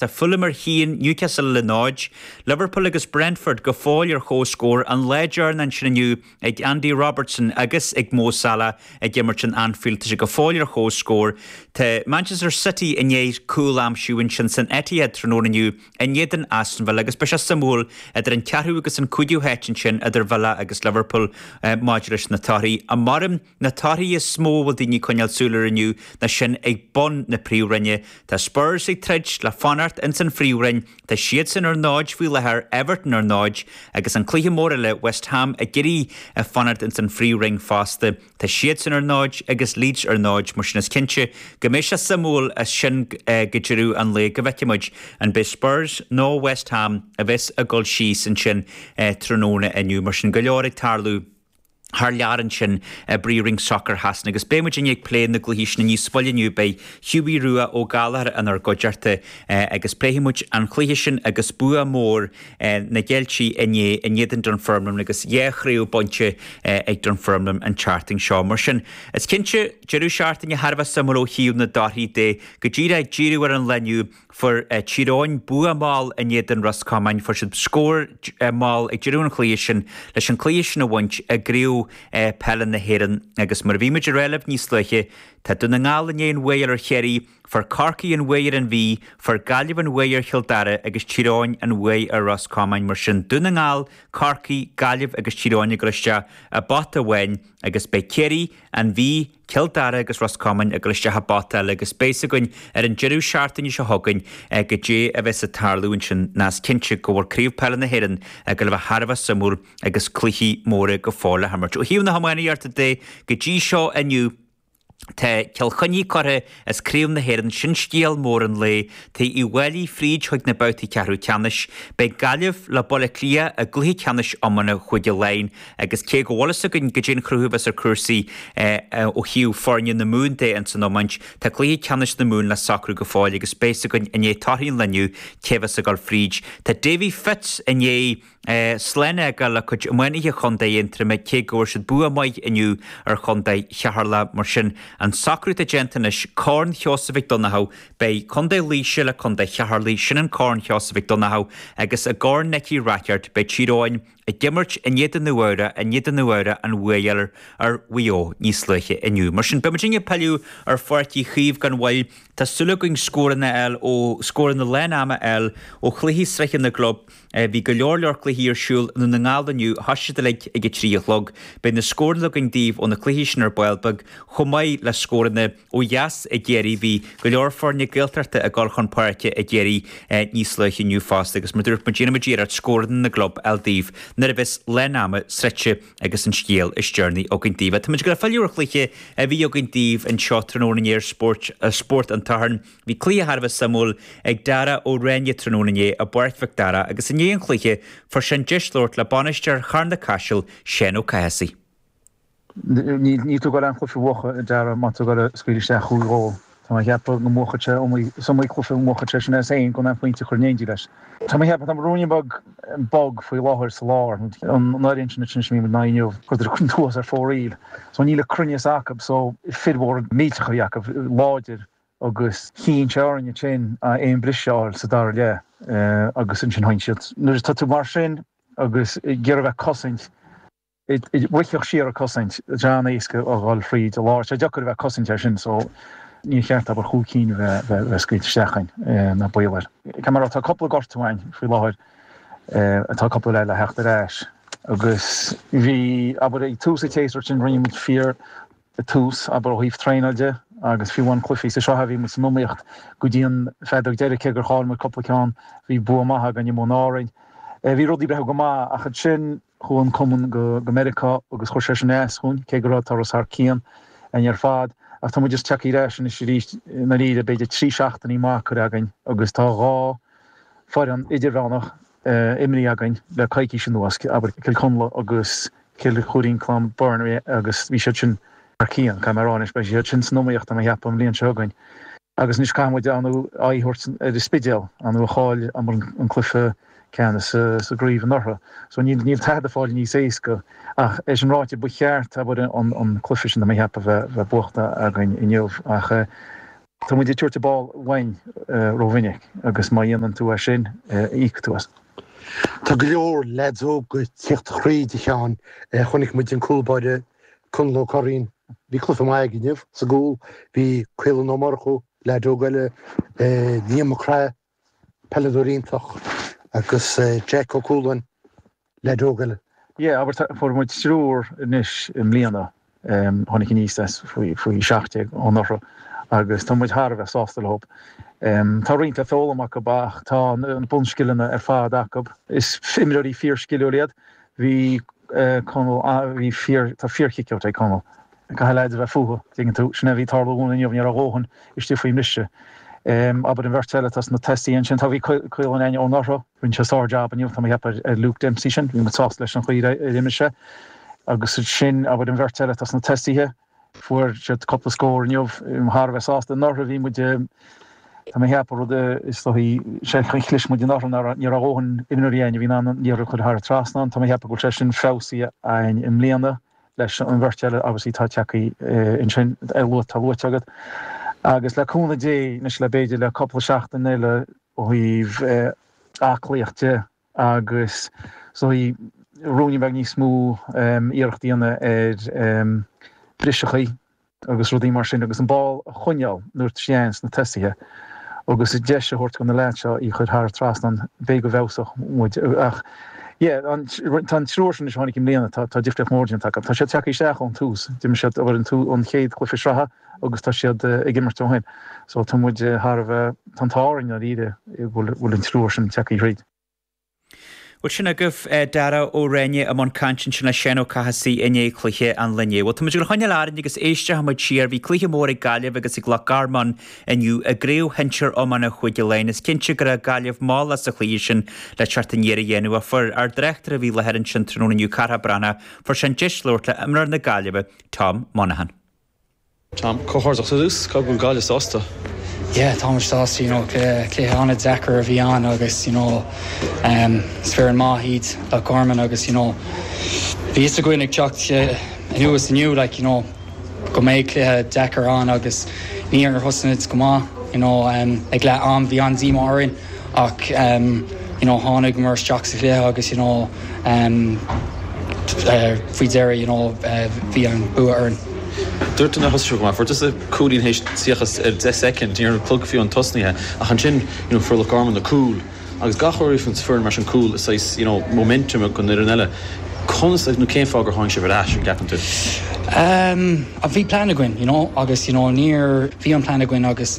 Tá Fulham ar chionn, Newcastle le 0, Liverpool agus Brentford go fóill ar chomhscór, an lá deireanach ansin inniu ag Andy Robertson agus ag Mo Salah ag imirt in Anfield tá sé go fóill ar chomhscór, tá Manchester City i ndiaidh cúl a aimsiú ansin san Etihad tráthnóna inniu in éadan Aston Villa agus beidh sé suimiúil idir an ceathrú agus an cúigiú háit ansin idir Villa agus Liverpool maidir leis na torthaí. Maram. Na torthaí is mó a bhfuil daoine ag coinneáil súil ar inniu ná sin ag bun na Príomhroinne. Tá Spurs ag troid le fanacht ins an Phríomhroinn. Tá siadsan ar 0 faoi láthair, Everton ar 0 agus an cluiche mór eile, West Ham ag iarraidh a fanacht ins an Phríomhroinn fosta. Tá siadsan ar 0 agus Leeds ar 0 mar sin is cinnte go mbeidh sé suimiúil as sin go deireadh an lae go bhfeicfidh muid an beidh Spurs nó West Ham a bheas ag dul síos ansin tráthnóna inniu. Mar sin go leor ag tarlú. thar lear ansin i bPríomhroinn Sacair Shasana agus beidh muidinne ag plé na gcluichí sin níos moille inniu. Beidh Hughie Rua Ó Gallchóir inár gcuideachta agus pléifidh muid an cluiche sin agus bua mór na gCeiltigh inné in éadan Dunfermline agus dhá chraobh bainte ag Dunfermline an tseachtain seo. Mar sin, is cinnte, deireadh seachtaine thar a bheith suimiúil ó thaobh na dtorthaí de. Go díreach ag díriú ar an lá inniu, Fuair Tír Eoghain bua mall in éadan Ros Comáin. Fuair siad scór mall ag deireadh an chluiche sin leis an cluiche sin a bhaint i gCraobh Peile na hÉireann agus mar a bhí muid a rá libh níos luaithe, tá Dún na nGall i ndiaidh an bhuaidh a fháil ar Chiarraí, fuair Corcaigh an bhuaidh ar an Mhí, fuair Gaillimh an bhuaidh ar Chill Dara agus Tír Eoghain an bhuaidh ar Ros Comáin. Mar sin, Dún na nGall, Corcaigh, Gaillimh agus Tír Eoghain ag dul isteach i bpota amháin agus beidh Ciarraí, An Mhí, Cill Dara agus Ros Comáin ag dul isteach i bpota eile agus beidh fhios againn ar an deireadh seachtaine seo chugainn goidé a bheas ag tarlú ansin ná is cinnte go bhfuil Craobh Peile na hÉireann ag dul a bheith thar a bheith suimiúil agus cluichí móra go fóill le himirt. Ó thaobh na hiománaíochta de go dtí seo inniu tá Cill Chainnigh curtha as Craobh na hÉireann sin scéal mór an lae, tá Uíbh Fhailí fríd chuig na babhtaí ceathrú ceannais. Beidh Gaillimh le Baile Átha Cliath i gcluiche ceannais iomána Chúige Laighean agus cé go bhfuil fhios againn goidé an cruth a bheas ar chúrsaí ó thaobh foirne na Mumhan de ins an iomáint, tá cluiche ceannais na Mumhan le socrú go fóill agus beidh fhios againn i ndiaidh torthaí an lae inniu cé bheas ag dul fríd. Tá Davy Fitz i ndiaidh. Slán fhágáil le cuid iománaithe chontae Aontroma cé go bhfuair siad bua maith inniu ar chontae Cheatharlach. Mar sin, an socrú atá déanta anois, Corn Sheosaimh Mhic Donnchadha, beidh contae Laoise le contae Cheatharlaigh, sin an Corn Sheosaimh Mhic Donnchadha, agus i gCorn Nicky Rackard, beidh Tír Eoghain ag imirt in éadan Nua-Eabhrac i ndiaidh do Nua-Eabhrac an bhuaidh a fháil ar Mhaigh Eo níos luaithe inniu. Mar sin, beidh muidinne ag pilleadh ar Pháirc Uí Chaoimh gan mhoill. Tá súil againn scóranna fháil ó scóranna lán ama fháil ó chluichí sraithe na gclub, Bhí go leor leor cluichí ar siúl i nDún na nGall inniu. Thosaigh siad uilig ag a trí a chlog. Beidh na scóranna againn daoibh ó na cluichí sin ar ball beag chomh maith le scóranna ó dheas i gCiarraí. Bhí go leor foirne Gaeltachta ag dul chun páirce i gCiarraí níos luaithe inniu fosta agus mar dúirt muid déanfaidh muid iarracht scóranna na gclub eile daoibh nuair a bheas leath an ama sroichte agus an scéal is deireanaí againn daoibh. Táimid ag filleadh ar chluiche a bhí againn daoibh anseo tráthnóna inné ar Spórt an tSathairn. Bhí cluiche thar a bheith suimiúil ag Dara Ó Ráinne tráthnóna inné i bPáirc Mhic Dara agus i ndiaidh an chluiche fuair sé an deis labhairt le bainisteoir Charna Caiseal, Seán Ó Cathasaigh. Níl tú ag goil an cluiche a bhuachan a Dara má tú ag goil a scaoileadh isteach chúig ghól. Tá mé ag ceapadh go mbuachfadh sé iomaí is iomaí cluiche a mbuachfadh sé sin as féin gan pointe a chur in éindí leis. Tá mé ag ceapadh tá ruainne beag bog faoi láthair sa lár an fhoireann sin sin a imríonn muid ná inniu go dtí thuas ar fóraoil so níl an cruinneas acu so fir mhóra millteacha a bhí acu láidir agus chinn sé orainne féin aon bhriseadh a fháil sa dara leath agus ansin sheinn siad. Nuair atá tú mar sin agus ag iarraidh bheith ag cosaint, ag briseadh siar ag cosaint, is an-éasca a dhul fríd an lár. Sé deacair a bheith ag cosaint air sin so níor cheart abair chúig cinn a bheith scaoilte isteach againn, ná baol air. Ceann eile, tá cúpla gortú againn faoi láthair, tá cúpla eile le theacht ar ais agus bhí, abair, ag tús an tséasúir sin rinne muid fíor I dtús, abair ó thaobh traenáil de agus fiú na cluichí sa sraith bhí muid san iomaíocht go dtí an feadóg deiridh cé gur chaill muid cúpla ceann, bhí bua maith againn in Árainn. Bhí rudaí ag breathnú go maith ach ansin chuaigh an cumann go go Meiriceá agus chuir sé sin as dúinn cé go raibh turas thar cionn againn ar fad ach tá muid ag teacht ar ais anois arís i ndáiríre b'fhéidir trí seachtainí maith curtha againn agus tá dhá foireann idirmheánach imrithe againn le coicís anuas, abair Cill Chonla agus Cill Choirín Cluain Bheirn, agus bhí siad sin thar cionn, caithfidh mé a rá anois, beidh siad sin san iomaíocht tá mé ag ceapadh an bhliain seo chugainn. Agus anois caithfidh muid ár n-aghaidh a thabhairt ar an Spidéal, ar ndóigh a chaill an cluiche ceannais sa sa gcraobh anuraidh. So níl níl tada ag fáil níos éasca ach é sin ráite ba cheart abair an an cluiche sin tá mé ag ceapadh bheith bheith buachta againn inniu ach eh, Tá muid ag tabhairt an ball uainn rómhinic agus má dhéanann tú é sin, íocfaidh tú as. Tá go leor leaids óga ag teacht tríd a Sheáin. Chonaic muid an cúlbáire Conall Ó Curraoin, bhí cluiche maith aige inniu sa gcúl, bhí Caolan Ó Murchú, leaid óg eile, Liam Mac Craith. peileadóir iontach agus Jeaic Ó Cualáin, leaid óg eile. Yeah, abair fuair muid triúr anois i mbliana, tháinig aníos as faoi seacht déag anuraidh agus tá muid thar a bheith sásta leo. Tá roinnt le foghlaim acu ach tá na bunscileanna ar fad acu. Is imreoirí fíor-sciliúil iad. Bhí Conall, bhí fíor, tá fíor-kickout ag Conall. Caithfidh leaids a bheith fúthu, tuigeann tú. Sin é a bhí ag tarlú dhúinn inniu, ní raibh a dhóthain istigh faoin mbriseadh. Abair an bheirt eile atá sna tosaithe ansin, tá, bhí Caolán ainneoin orthu. Rinne sé sár jab inniu, tá mé ag ceapadh ar Luke Dempsey sin, bhí muid sásta leis an chaoi ar imir sé. Agus ansin, abair an bheirt eile atá sna tosaithe, fuair siad cúpla scór inniu, bhí muid thar a bheith sásta, anuraidh, bhí muid, tá mé ag ceapadh rud a, is dóigh, chlis muid anuraidh, ní raibh a dhóthain imreoirí againn a bhí in ann an liathróid a chur thar an trasnán, tá mé ag ceapadh go bhfuil sé sin feabhsaithe againn i mbliana. leis an bheirt eile obviously atá tagthaí ansin a luath atá luaite agat agus le cúnamh Dé anois le b'fhéidir le cúpla seachtain eile ó thaobh aclaíocht de agus so í rúin a bheidh níos mó iarracht a dhéanamh ar briseadh agus rudaí mar sin agus an ball a choinneáil nuair a théann sé sna tosaithe agus deis a thabhairt do na leaids seo í chuir thar trasnán b'fhéidir go bhfeabhsóidh muid ach yeah an tá an triúr sin anois a tháinig i mbliana tá tá difríocht mór déanta acu tá siad tagthaí isteach ón tús d'imir siad a bhfuil an tú an chéad chluiche sraithe agus tá siad ag imirt ó shin so tá muid thar a bheith tá an t-ádh orainn dáiríre go bhfuil an triúr sin tagthaí thríd Bhuel sin agaibh Dara Ó Ráinne i mbun cainte ansin le Seán Ó Cathasaigh i ndiaidh chluiche an lae inniu. Bhuel, tá muid ag goil a choinneáil orainn agus éistfidh muid siar. Bhí cluiche mór ag Gaillimh agus ag Loch Garman inniu i gcraobh shinsir iomána Chúige Laighean. Is cinnte go raibh Gaillimh mall as an chluiche sin le teacht aniar a dhéanamh. Ach fuair ár dtráchtaire a bhí i láthair ansin tráthnóna inniu, Cárthach Breathnach, fuair sé an deis labhairt le imreoir na Gaillimhe, Tom Monaghan. Tom, comhghairdeachas ar dtús, caithfidh go bhfuil Gaillimh sásta? Yeah, táimid sásta, you know, cluiche an-deacair a bhí ann agus, you know, is foireann maith iad Loch Garman agus, you know, bhí 'fhios againn ag teacht anuas inniu, like, you know, go mbeadh cluiche deacair ann agus níor thosnaíomid go maith, you know, ag leath am bhí an-díomá orainn. ach you know tháinigeamar isteach sa chluiche agus you know faoi dheireadh you know bhí an bua orainn. Dúirt tú nár thosaigh sibh go maith, fuair tusa cúilín théis 30 soicind, ní raibh an clog fiú amháin tosnaithe ach ansin you know fuair Loch Garman na cúl agus gach uair a fhaigheann foireann mar sin cúl saghas you know momentum ag an fhoireann eile, conas nó cén fáth gur tháinig sibh ar ais, an gceapann tú? Bhí plean againn you know agus you know níor, bhí an plean againn agus.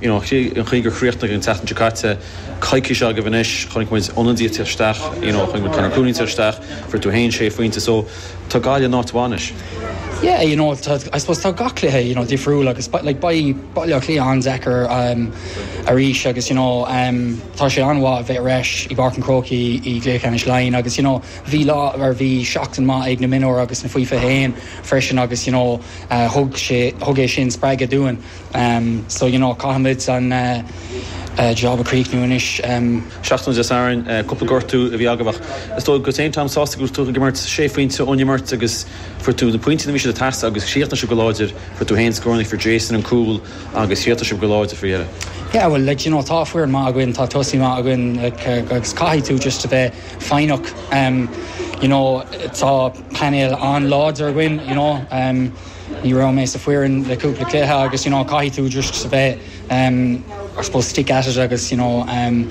you know an chaoi gur chríochnaigh an tseachtain seo caite coicís agaibh anois chonaic muid ionadaithe teacht isteach you know chonaic muid Conor Cooney teacht isteach fuair tú fhéin sé phointe so tá Gaillimh in áit mhaith anois. Yeah you know tá I suppose tá gach cluiche you know difriúil agus but like beidh Baile Átha Cliath an-deacair um arís agus you know um tá sé an-mhaith a bheith ar ais i bPáirc an Chrócaigh i gcluiche ceannais Laighean agus you know bhí lá or bhí seachtain maith ag na mionúir agus na faoi fiche a haon freisin agus you know uh thug sé thug é sin spreagadh dúinn. em so you know caithfimid an eh job a chríochnú anois em. seachtaine Dé Sathairn. Eh cúpla gortú a bhí agaibh ach is dóigh go bhfuil tú an-sásta go bhfuil tú ag imirt. Sé phointe ón imirt agus fuair tú na pointí nuair a bhí siad ag teastáil agus chríochnaigh sibh go láidir. Fuair tú féin scór fuair Jason an cúl agus chríochnaigh sibh go láidir faoi dheireadh. Yeah bhuel like d'you know tá foireann maith againn tá tosaí maith againn like eh agus caithfidh tú just a bheith foighneach em you know tá painéal an-láidir againn you know em. Ní raibh mé san fhoireann le cúpla cluiche agus you know caithfidh tú just a bheith um I suppose stick at it agus you know um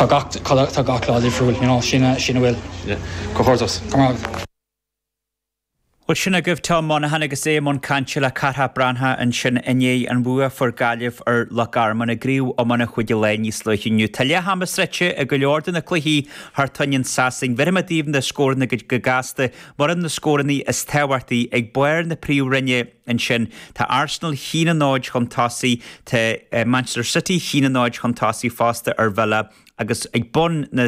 tá gach tá gach lá difriúil you know sin a bhfuil. Yeah. Comhghairdeas. Comhghairdeas. Bhuel sin agaibh Tom Monaghan agus é i mbun cainte le Carthach Breathnach ansin i ndiaidh an bhua a fuair Gaillimh ar Loch Garman i gcraobh iomána Chúige Laighean níos luaithe inniu. Tá leath ama sroichte i go leor de na cluichí thar toinn i Sasain. Bheirfidh mé daoibh na scóranna go gasta Mar atá na scóranna is tábhachtaí ag barr na príomhroinne ansin, tá Arsenal a haon a náid chun tosaigh, tá Manchester City a haon a náid chun tosaigh fosta ar Villa agus ag bun na.